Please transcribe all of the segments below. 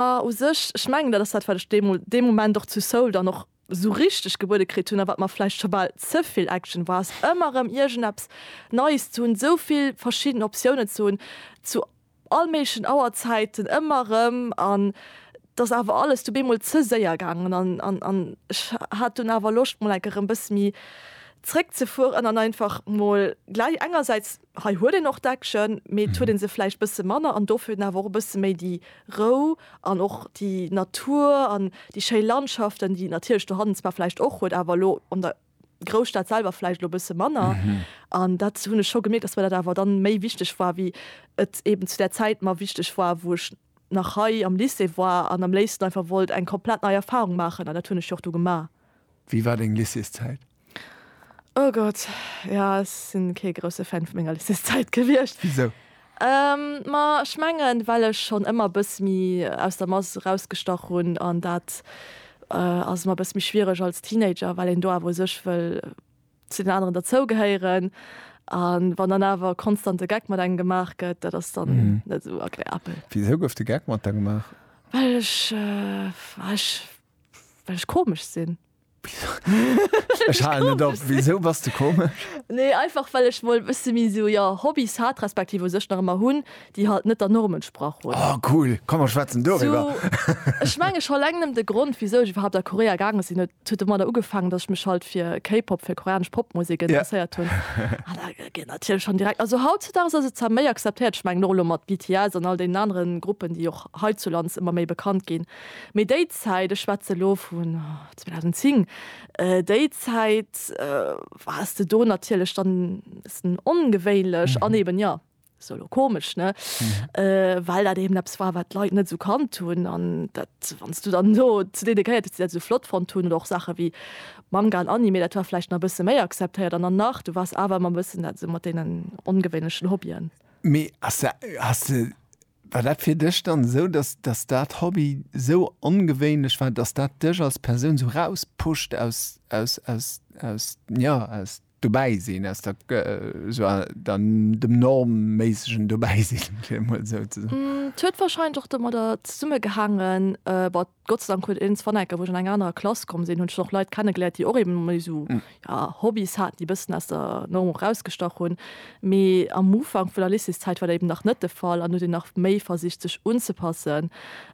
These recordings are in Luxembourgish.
A u sech, ech mengen, dat ass dat, wat ech deemol, dee Moment och zu Seoul dann och esou richteg gebuede kritt hunn a wat mer vläicht scho bal ze vill Action war, ass ëmmer erëm iergendeppes Neies ze hunn, esou vill verschidden Optiounen ze hunn zu all méiglechen Auerzäiten ëmmer erëm. An t'ass awer alles du bemol ze séier gaangen an, an, an ech hat dunn awer Loscht mol enker erëm e bësse méi zréckzefueren an einfach mol gläich engersäits, Hei huet een och Deckchen, mee et huet ee se vläicht bësse manner an dofir awer och e bësse méi déi Rou an och déi Natur an déi schéi Landschaften, déi et natierlech dohannen zwar vläicht och huet, awer elo an der Grousstad selwer vläicht elo e bësse manner. An dat hunn ech scho gemierkt, dass mir dat awer dann méi wichteg war, wéi et eeben zu där Zäit mer wichteg war, wou ech nach hei am Lycée war an am léifsten einfach wollt eng komplett nei Erfahrung maachen. An dat hunn ech jo och du gemaach. Wéi war deng Lycéeszäit? Oh Gott, jo ech sinn kee grousse Fan vu menger Lycéeszäit gewiescht. Wisou? Ma ech mengen well ech schonn ëmmer bësse méi aus der Mass erausgestach hunn an dat ass ëmmer bësse méi schwiereg als Teenager, well een do awer u sech wëll zu den aneren derzougehéieren an wann dann awer konstant de Geck mat engem gemaach gëtt, dat ass dann net esou agreabel. Wisou gouf de Geck mat der gemaach? Well ech, well ech komesch sinn. Ech halen net op, wisou bass de komesch? Nee, einfach well ech mol e bësse méi sou, jo, Hobbys hat, respektiv u sech nach ëmmer hunn, déi halt net der Norm entsprach hunn. Oh cool, komm mer schwätzen doriwwer. Ech mengen scho eleng nëmmen de Grond wisou ech iwwerhaapt a Korea gaange sinn, huet huet domadder ugefaangen, dass ech mech halt fir K-Pop, fir koreanesch Popmusek interesséiert hunn. An da geet natierlech schonn direkt, also hautzudags ass et zwar méi akzeptéiert, ech mengen och elo mat BTS an all deenen anere Gruppen, déi och heizulands ëmmer méi bekannt ginn, Mee déi Zäit, ech schwätze elo vun 2010, déi Zäit waars de do natierlech dann e bëssen ongewéinlech an eeben, jo, se elo komesch, ne, well dat eeben eppes war, wat d'Leit net esou kannt hunn. An dat, wann s du dann do zu deene gehéiert hues, déi dat esou flott fonnt hunn, oder och Saache wéi Manga an Anime, dat war vläicht nach e bësse méi akzeptéiert. An dann nach, du waars awer ëmmer e bëssen dat esou mat deenen ongewéinlechen Hobbyen. Mee ass dat, has de. War dat fir dech dann esou, dass dass dat Hobby esou ongewéinlech war, dass dat dech als Persoun esou rauspusht aus aus aus aus jo aus dobäi sinn, aus der esou der dem normméissegen dobäi sinn, fir emol esou ze soen? Et huet warscheinlech och domadder zesummegehaangen, Gott sei Dank huet een zwar enker, wou ech an eng anerer Klass komm sinn, hunn ech och Leit kennegeléiert, déi och eben méi esou, ja, Hobbys haten, déi e bëssen aus der Norm och erausgestach hunn. Mee am Ufank vun der Lycéeszäit war dat eben nach net de Fall an huet een nach méi versicht, sech unzepassen.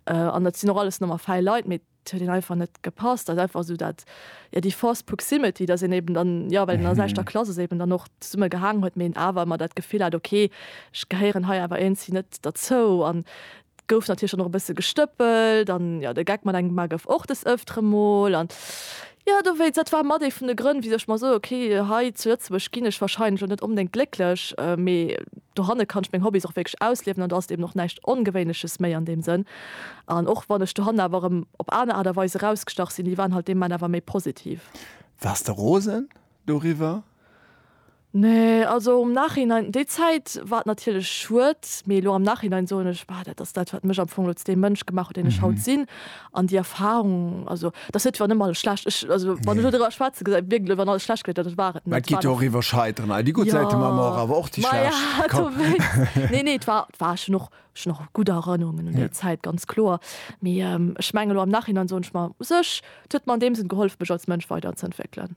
An et sinn och alles normal fäi Leit, mee et huet een einfach net gepasst. Dat ass einfach esou dat, ja, déi forced proximity, dass een eben dann, ja, well een aus eischter Klass ass, eben dann och zesumme gehaangen huet, mee een awer ëmmer dat Gefill hat, okay, ech gehéieren hei awer iergendwéi net derzou. An Gouf natierlech dann och e bësse gestëppelt an jo, de Geck mat engem Mar gouf och des Ëftere mol an jo, dowéinst, dat war mat ee vun de Grënn, wisou ech mer soe, okay, hei zu Lëtzebuerg ginn ech wahrscheinlech och net onbedéngt glécklech, mee dohanne kann ech meng Hobbys och wierklech ausliewen an do ass et eben och näischt Ongewéinleches méi an deem Sënn. An och wann ech dohanne awer erëm op aner Aart a Weis erausgestach sinn, déi waren halt dee Moment awer méi positiv. Waars de rosen doriwwer? Nee, also um Nachhinein, déi Zäit war natierlech schued, mee elo am Nachhinein soen ech, bah, dat ass dat, wat mech am Fong elo zu deem Mënsch gemaach huet, deen ech haut sinn. An déi Erfarung, also et ass net, wann ëm alles schlecht, ech, also wann ech elo driwwer schwätzen, gesäit et wierklech aus, wann alles schlecht gewiert, dat ass, war et Mä net. et geet jo och iwwer Scheiteren hei. Déi gutt Säite man och, awer och déi schlecht. Jo, maja, do wéinst. Nee, nee, et war, et war, ech hunn och, ech hunn och gutt Erënnerungen un déi Zäit, ganz kloer. Mee ech mengen elo am Nachhinein soen ech mer, u sech, et huet mer an deem Sënn gehollef, mech als Mënsch weiderzëntwéckelen.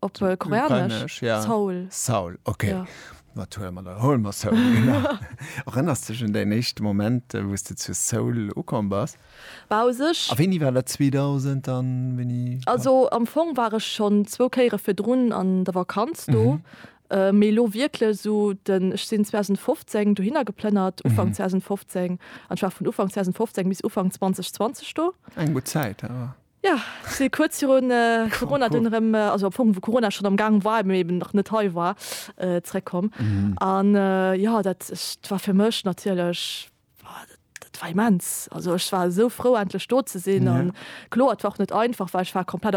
Op Koreanesch? Seoul. Seoul, ok. Wat huele mer da? Hole mer Seoul, genau. Erënners de dech un däin éischte Moment, wou s de zu Seoul ukomm bass? Bah, u sech. A wéini war dat? 2000 a wéini? Also am Fong war ech schonn zwou Kéiere virdrun an der Vakanz do, mee elo wierklech esou den, ech sinn 2015 dohinner geplënnert, Ufank 2015, an ech war vun Ufank 2015 bis Ufank 2020 do. Eng gutt Zäit awer. Jo, si kuerz virun Corona dunn erëm, also am Fong wou Corona schonn am Gaang war, mee eben nach net hei war, zeréckkomm. An jo, dat war fir mech natierlech, dat war immens. Also ech war esou frou endlech do ze sinn. Kloer et war och net einfach, well ech war komplett op.